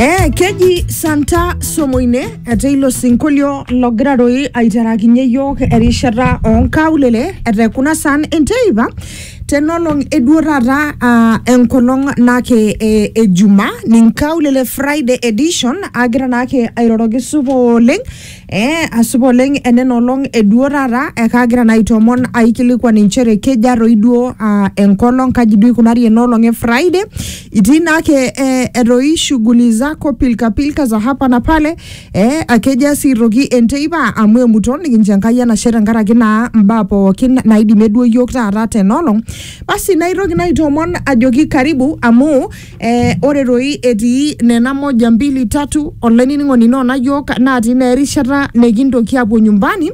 Eh, keji Santa Somoine etii ilo sinkolio logira doi aiterakinye yiok erishata onkaulele etaa kuna saan enteipa tenolong eduo taata ah, enkolong naake eh, ejuma ninkaulele Friday edition agira naake airoroki supa oleng Eh, ashipa oleng enena olong eduo taata ekaagira naa aitoomon aikilikuan inchere keja toi duo ah, enkolong kaji duo ikunari enoolong e friday itii naake eh, etoi shughuli zako pilkapilka za hapa na pale eh, akeja sii toki enteipa amu emuto nikincho enkai enashe tenkaraki naa mbaa pookin naidimie duo yiok taata tenoolong basi naitoki naa aitoomon ajoki karibu amu Eh, ore doi etii nena moja mbili tatu olainining'oni noona yiok natii naa erishata nikintoki apuo nyumbani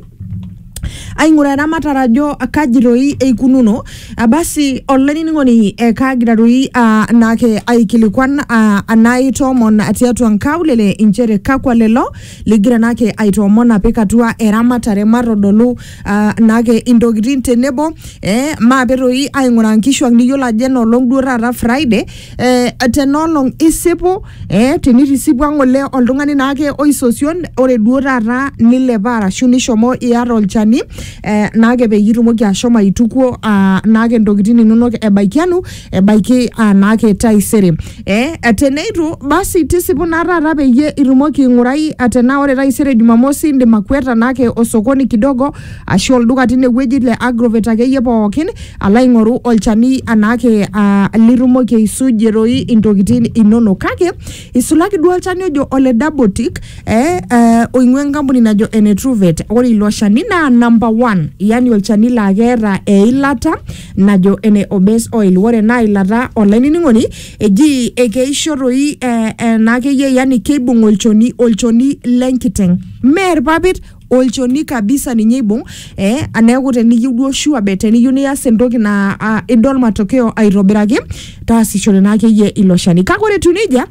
aing'uraa eramatare ajo kaji doi eikununo Ah, basi olainining'oni eh, kaagira doi ah, naake aikilikuan ah, anaitoomon tiatua nkaulele inchere kakwa lelo ligira naake aitoomon apik atua eramatare matodolu ah, naake intokitin tenebo eh, maape toi aing'uraa nkishuak niyiolo ajo enoolong duo taata Friday eh, tenoolong isipu eh, tenitisipua ng'ole oltung'ani naake oisosion ore duo taata nilepa arashu nishomo iyata olchani eh, naake peyie itumoki ashomo aitukuo ah, naake ntokitin inonok ebaikianu ebaiki anaake taisere eh, teneitu basi tisipu naa taata peyie itumoki aing'urai eh, tenaa ore taisere jumamosi indim akweta naake osokoni kidogo ashu olduka tinewueji le agrovet akeyie pookin alo aing'oru olchani anaake ah, litumoki aisujie toi intokitin inonok kake isulaki duo olchani ojo ole dabotik eh, eh, oing'ua enkampuni najo ene truvet ore ilo shani naa number one yani olchani laa keeta eilata Najo ene o Base Oil, ore ena ilata olainining'oni eji ekeisho toi eh, ena akeyie yani keibung olchoni, olchoni lenkiteng. Mee irpapit, olchoni kabisa ninye eibung eh, neeku teniyieu duo sure bet teniyieu nias entoki naa ah, idol matokeo aitobiraki taasishore naa akeyie ilo shani. Kake ore etiu nejia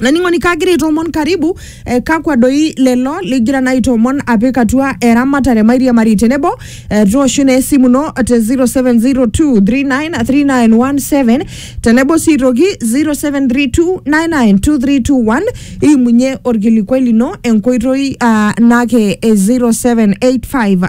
laning'oni kagira aitoomon karibu eh, kakwa doi lelo ligira naa aitoomon apik atua eramatare mairiamari tenebo eh, tooshu naa esimu ino te 0702393917 tenebo sii aitoki 0732992321 iimunye orkilikuai lino enkoitoi ah, naake eh, 0785